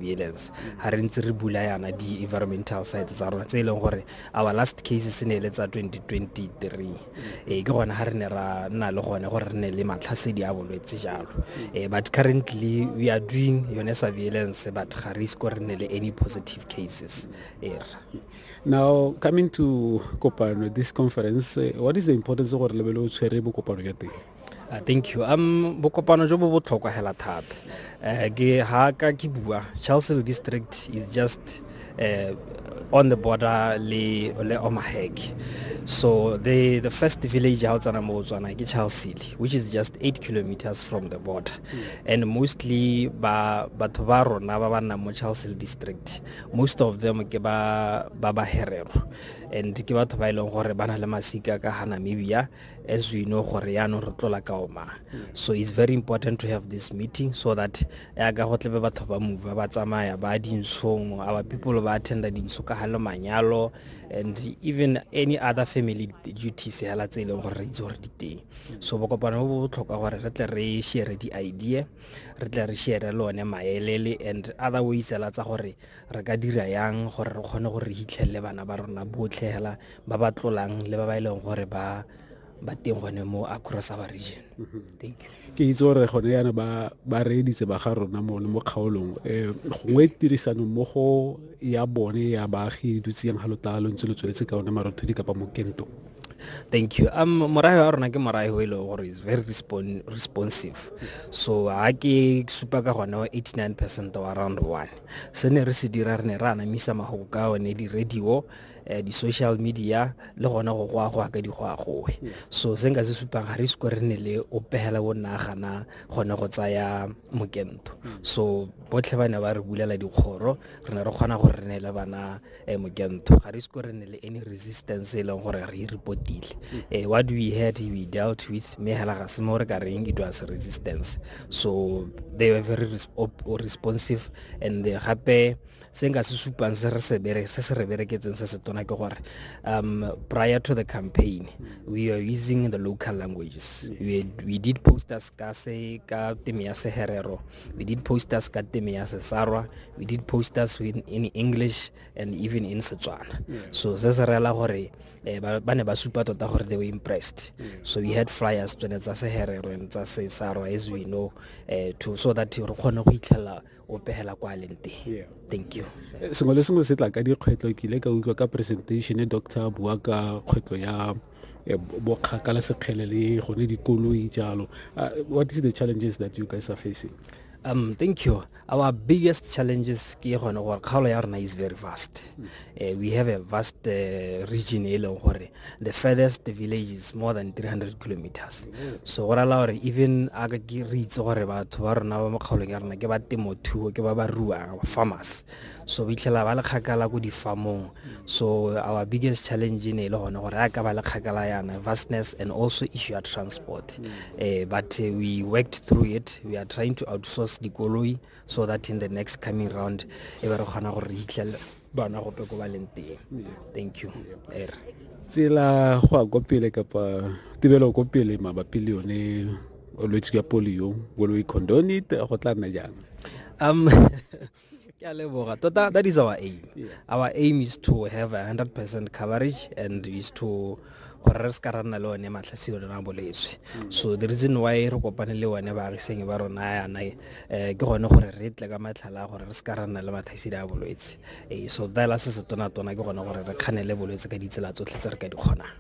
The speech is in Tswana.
surveillance ga re ntse re bula yana di-environmental site tsa rona tse e leng gore our last case se ne e le tsa 2023 ee ke gone ga re ne ra nna le gone gore re ne le matlhasedi a bolwetse jalo um but currently we are doing yone surveillance but ga re isko re ne le any positive cases er now coming to kopano this conference what is the importance gore lebele o tshwere bokopano ya teng Ah, thank you um bokopano jo bo botlhokwa hela thata um ke ha ka ke bua charlesville district is just uh, on the border le le omahek so the the first village ha o tsana mo tswana ke charlesville which is just 8 kilometers from the border mm. and mostly ba batho ba rona ba ba nna mo charlesville district most of them ke ba ba ba herero and ke batho ba ile e gore ba na le masika ka ha namibia as we know gore yaanong re tlola ka oma so it's very important to have this meeting so that yaka go tlebe batho ba move ba tsamaya ba dinshong our people ba attenda dintsho ka gale manyalo and even any other family duties hela tse e leng gore re itse gore di teng so bokopano bo bo botlhokwa gore re tle re share di-idea re tle re share le one maelele and other ways hela tsa gore re ka dira yang gore re kgone gore re hitlhelele bana ba rona botlhe hela ba ba tlolang le ba ba e leng gore ba ba teng gone mo across our region mhm. ke itse gore gone yana ba ba reeditse ba ga rona mo mo kgaolong um gongwe tirisano mmogo ya bone ya baagi e dutse yang ga lotala lo ntse lo tsweletse ka one marothodi kapa mokento thank you um morayo wa rona ke morayo e leng gore is very respon responsive so ga ke supa ka gone wa 89 percent wa round one se ne re se dira re ne re anamisa magogo ka one di-radio Eh, di-social media le gona go go a go aka di go a gowe so se nka se supang ga re siko re nne le o pegela bo nna gana gone go tsaya mokento so botlhe ba ne ba re bulela dikgoro re ne re kgona go re neele bana um mokento ga re siko re nne le any resistance e leng gore re e repotile um eh, what we had we dealt with mme hela ga se mo re ka reng it was resistance so they were very responsive and gape se nka se supang se re se bere se se re bereketseng se se tona ke gore um prior to the campaign we are using the local languages we, we did posters ka se ka teme ya seherero we did posters ka teme ya sesarwa we did posters in, in english and even in setswana so se se rela gore eh, ba ne ba supa tota gore they were impressed so we had flyers tsone tsa seherero and tsa sesarwa as we know eh, to so that re kgone go itlhelela o pegela kwa leng teng thank you eh, sengwe le sengwe se tla ka dikgwetlho ke ile ka utlwa ka presentation e doctor a bua ka kgwetlho ya eh, bokgakala sekgele le gone dikoloi jalo ah, what is the challenges that you guys are facing um thank you our biggest challenges ke gone gore kgaolo ya rona is very fast Uh, we have a vast uh, region e leng gore the furthest village is more than 300 kilometers so go rala gore even a re itse gore batho ba rona ba mo kgaolong ya rona ke ba temothuo ke ba ba ruang farmers so ba itlhela ba le kgakala ko difamong so our biggest challenge ne e le gone gore a ka ba le kgakala yana vastness and also issue ya transport uh, but uh, we worked through it we are trying to outsource dikoloi so that in the next coming round e ba re kgona gore re hitlhele bana gope ko ba leng teng thank you er tsela go a ko pele kapa tibelo ko pele mabapi le yone olwetse ya polio will we condone it go tla nna jang um ke a leboga tota that is our aim yeah. our aim is to have a 100 percent coverage and is to gore re se ka ra nna le one matlhasio le na bolwetse so the reason why re kopane le one baagisenyi ba rona yana um eh, ke gone gore re tle ka matlhala a gore re se ka ra nna le matlhasedi a bolwetse eh, so fela se se tonatona ke gone gore re kganele bolwetse ka ditsela tsotlhe tse re ka di kgonang